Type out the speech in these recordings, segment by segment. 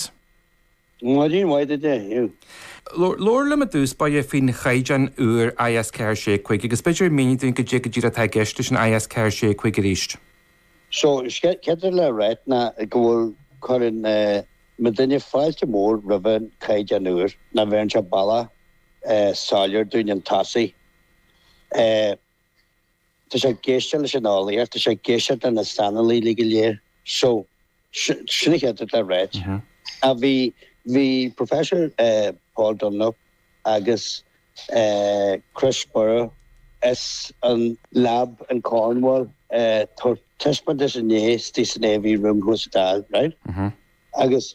Cat. Maidin mhaith duit, a Aodh. Labhair liom i dtús báire faoin chaighdeán úr IS 465 agus b'fhéidir mínigh dúinn cad é go díreach atá i gceist leis an IS 465 arís. So, an chéad rud le ráit ná go bhfuil cuireann muidinne fáilte mhór roimh an chaighdeán úr, nó bheireann sé bealach soiléir dúinn chun tosaigh. Tá sé ag éisteacht leis an eolaíocht, tá sé ag éisteacht leis na saineolaithe go léir. So, sin an chéad rud le ráit. Bhí, bhí Professor Paul Dunlop agus Chris Brough as an lab in Cornwall ag tabhairt taispeántais inné, istigh san AV Room thuas sa Dáil, right? Agus.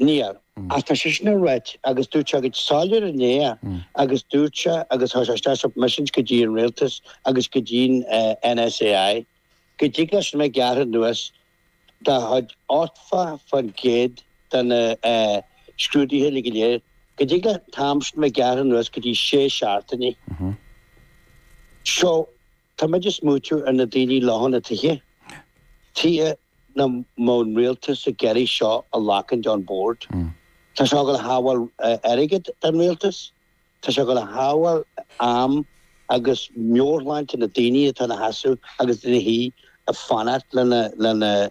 Níor. Agus tá seisean ag ráit, agus dúirt sé go soiléir inné é, agus dúirt sé, agus chuir sé isteach submissions go dtí an Rialtas agus go dtí an NSAI, go dtig leis a bheith gearrtha anuas dá chuid, 80% de na scrúduithe uile go léir, go dtig leis an t-am sin a bheith gearrtha anuas go dtí sé seachtaine. So. Tá muid ag smaointeamh ar na daoine ar leofa na tithe, tuige nach mbíonn an rialtas ag iarraidh seo a ghlacaint on board. Tá seo ag gabháil a shábháil airgead don rialtas, tá seo ag gabháil a shábháil am agus meabhairshláinte na ndaoine atá ina seasamh agus ina suí ag fanacht lena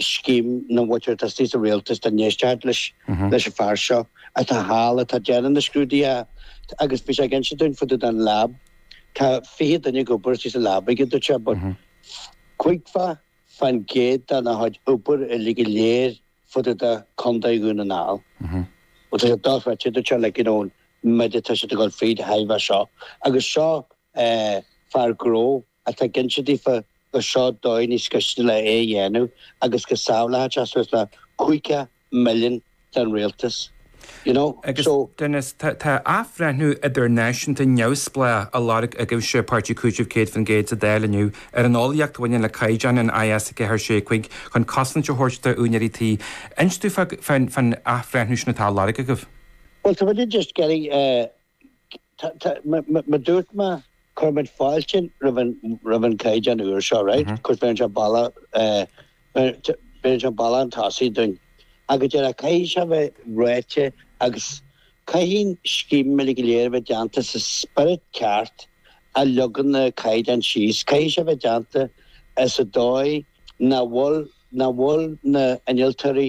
scéim na muicearteastaí sa rialtas dá n-éistfeadh siad leis an fhear seo atá thall atá ag déanamh na scrúduithe agus bhí sé ag inse dúinn fá dtaobh den lab tá fiche duine ag obair istigh sa lab aige dúirt sé but caoga fán gcéad dena gcuid obair uilig go léir fá dtaobh de Chontae Dhún na nGall bhuel tá sé dochreidte dúirt sé like you know an méid atá siad ag dul fríd de thairbhe seo agus seo eh fear gnó atá ag inse daofa go seod dóigh níos gaiste le é a dhéanamh agus go sábhálfadh sé suas le caoga milliún don rialtas you know Agus, so. Dennis, tá tá athbhreithniú idirnáisiúnta neamhspleách á lorg agaibhse, páirtí cúitimh 100% sa Dáil inniu, ar an eolaíocht a bhaineann le caighdeán an IS 4 6 5 chun cosaint a thabhairt d'úinéirí tí. Inis domh fá fán fán athbhreithniú sin atá á lorg agaibh? Bhuel, tá muidinne just ag iarraidh eh, Mar a dúirt mé, cuirfimid fáilte roimh an gcaighdeán úr seo, right? Of course, bheireann sé bealach, bheireann sé bealach chun tosaigh dúinn. Ach ag an deireadh, caithfidh sé a bheith ráite agus caithfidh an scéim uile go léir a bheith déanta sa spiorad ceart a leagann na caighdeáin síos. Caithfidh sé a bheith déanta sa dóigh nach bhfuil na hinnealtóirí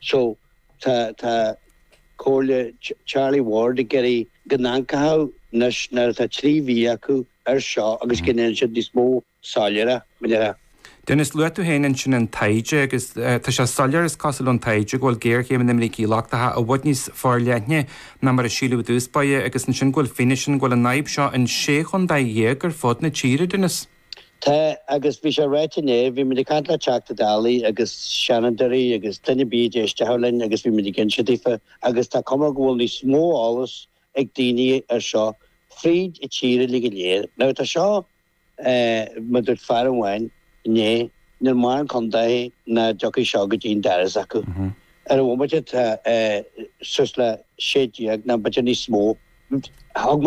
So, tá, tá comhairle Charlie Ward ag iarraidh go n-amharcfadh siad anois nuair atá trí mhí acu air seo agus go ndéanann siad níos mó soiléire, mar a déarfá. Dennis, luaigh tú féin ansin an taighde agus tá sé soiléir, is cosúil ón taighde, go bhfuil géarchéim na mbrící lochtacha i bhfad níos forleithne ná mar a síleadh i dtús báire agus ansin go bhfuil fianaise ann go bhfuil an fhadhb seo in sé chontae dhéag ar fud na tíre, Dennis. Tá, agus bhí sé ráite inné, bhí muid ag caint le Teachta Dálaí agus Seanadóirí agus duine ar bith a d'éistfeadh linn agus bhí muid ag inse daofa agus tá cuma go bhfuil níos mó eolas ag daoine air seo fríd an tír uilig go léir. Now tá seo, mar dúirt fear amháin inné, níl mórán contaetha nach dtiocfaidh seo go dtí an doras acu. Ar an bhomaite tá suas le sé déag, ná b'fhéidir níos mó. Thug mé